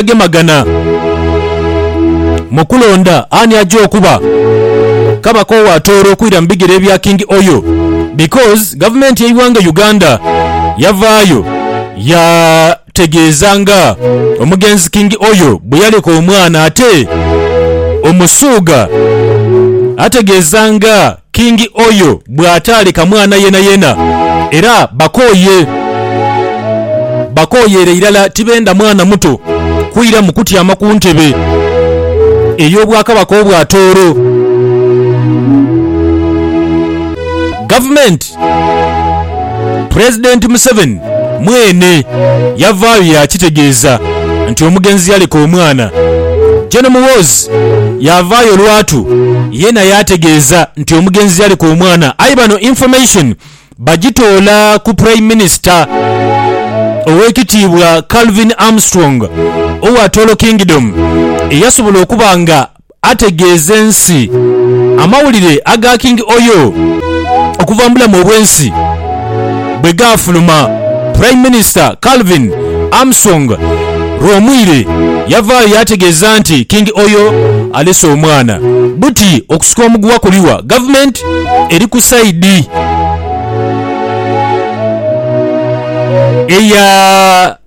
abagemagana mu kulonda ani aja okuba kabaka owa Tooro okwira mu bigere ebya King Oyo because gavumenti y'eighanga Uganda yavaayo yategeeza nga omugenzi King Oyo bweyaleka omwana ate Omusuuga ategeeza nga Kingi oyo bw'ataaleka mwana yeenayeena, era bakooye. Bakooyere irala tibenda mwana muto kwiramu kutyama ku ntebe ey'obwakabaka obwa Tooro. Gavumenti Pulezidenti Museveni mwene yavaayo yaakitegeeza nti omugenzi yaleka omwana. Gen Muhoozi yavaayo lwatu yeena yaategeeza nti omugenzi yaleka omwana aye bano information bagitoola ku Prime Minister Owekitiibwa Calvin Armstrong owa Toro Kingdom eyasobola okuba nga ategeeze ensi amawulire aga King Oyo okuva mu bulamu obw'ensi bwe gaafuluma. Prime Minister Calvin Amsong Rwomwire yavaayo yaategeeza nti King Oyo alese omwana. Buti okusika omuguwa kuliwa, Government eri ku side eya.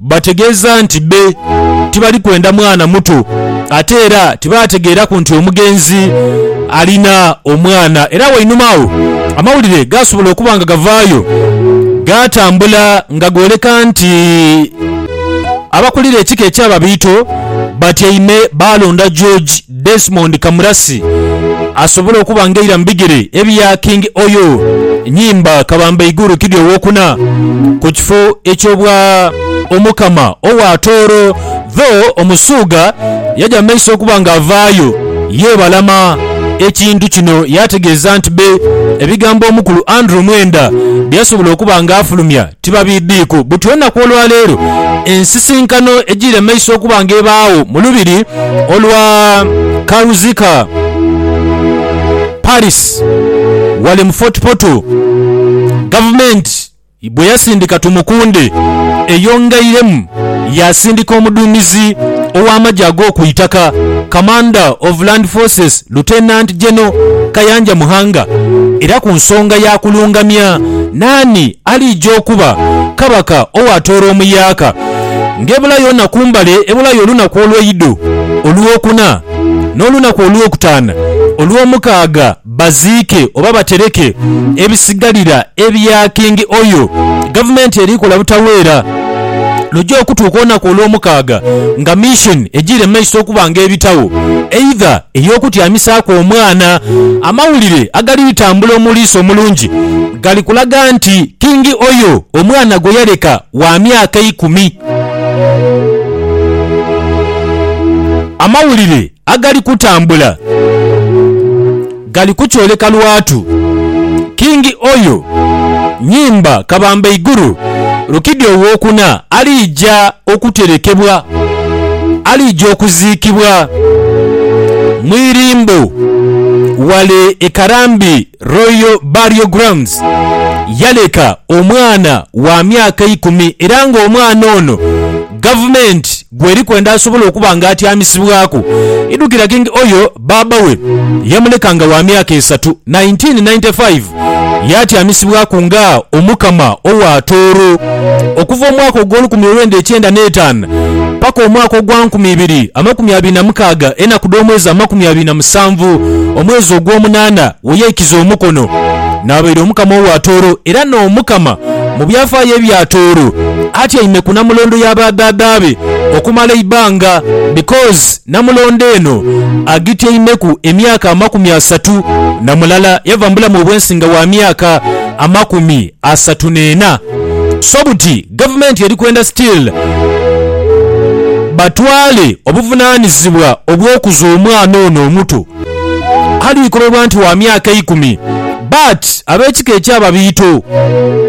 Bategeeza nti be tibali kwenda mwana muto ate era tibaategeeraku nti omugenzi alina omwana era wainuma agho amawulire gaasobola okuba nga gavaayo gaatambula nga gooleka nti abakulira ekika ekya Babiito batyaime baalonda George Desmond Kamurasi asobole okuba nga eira mu bigere ebya King Oyo Nyimba Kabamba Igurukidhi owokuna ku kifo eky'obwa Omukama owa Tooro though Omusuuga yaja mu maiso okuba nga avaayo yebalama ekintu kino yategeeza nti be ebigambo Omukulu Andrew Mwenda byeyasobola okuba nga afulumya Tibabiidhiiku buti olunaku olwa leero ensisinkano ejiire mu maiso okuba nga ebaagho mu lubiri olwa Karuzica Paris ghale mu Fort Portal, Gavumenti bwe yasindika Tumukunde eyongeiremu yaasindika omuduumizi ow'amagye ag'oku itaka, Commander of Land Forces, Lieutenant General Kayanja Muhanga era ku nsonga ya kulungamya naani Aliija okuba Kabaka ow'atoola omuyaaka, ng'ebulayo naku mbale ebulayo olunaku olweidho, olwokuna, n'olunaku olwokutaana, olwomukaaga baziike oba batereke ebisigalira ebya Kingi oyo. Gavumenti eri kola butaweera luja okutuuka olunaku olwomukaaga nga mission ejiire mu maiso okuba ng'ebitagho, eidha ey'okutyamisaaku omwana. Amawulire agaliritambula omuliisa omulungi gali kulaga nti kingi oyo omwana gwe yaleka wa myaka ikumi. Amawulire agali kutambula gali kukyoleka lwatu kingi oyo Nyimba Kabamba Iguru Rukidi Owookuna aliija okuterekebwa aliija okuziikibwa mu irimbo ghale e Karambi Royal Burial Grounds yaleka omwana wa myaka eikumi era nga omwana ono gavumenti gweri kwenda asobole okuba nga atyamisibwaku idhukira king Oyo baaba we yamuleka nga wa myaka esatu 1995 yatyamisibwaku nga Omukama owa Tooro. Okuva omwaka ogw'olukumi olwenda ekyenda n'etaanu paka omwaka ogwa nkumi ibiri amakumi abiri na mukaaga, enaku dh'omwezi amakumi abiri na musanvu, omwezi ogw'omunaana, we yaikiza omukono. Naabaire Omukama owa Tooro, era n'Omukama mu byafaayo ebya Tooro, atyaime ku namulondo ya ba dhaadha be okumala eibanga, because namulondo eno agityaimeku emyaka amakumi asatu na mulala, yava mu bulamu obw'ensi nga wa myaka amakumi asatu neena so buti gavumenti eri kwenda still batwale obuvunanizibwa obwokuza omwana ono omuto ali kobebwa nti wa myaka eikumi but abekika ekya babiito.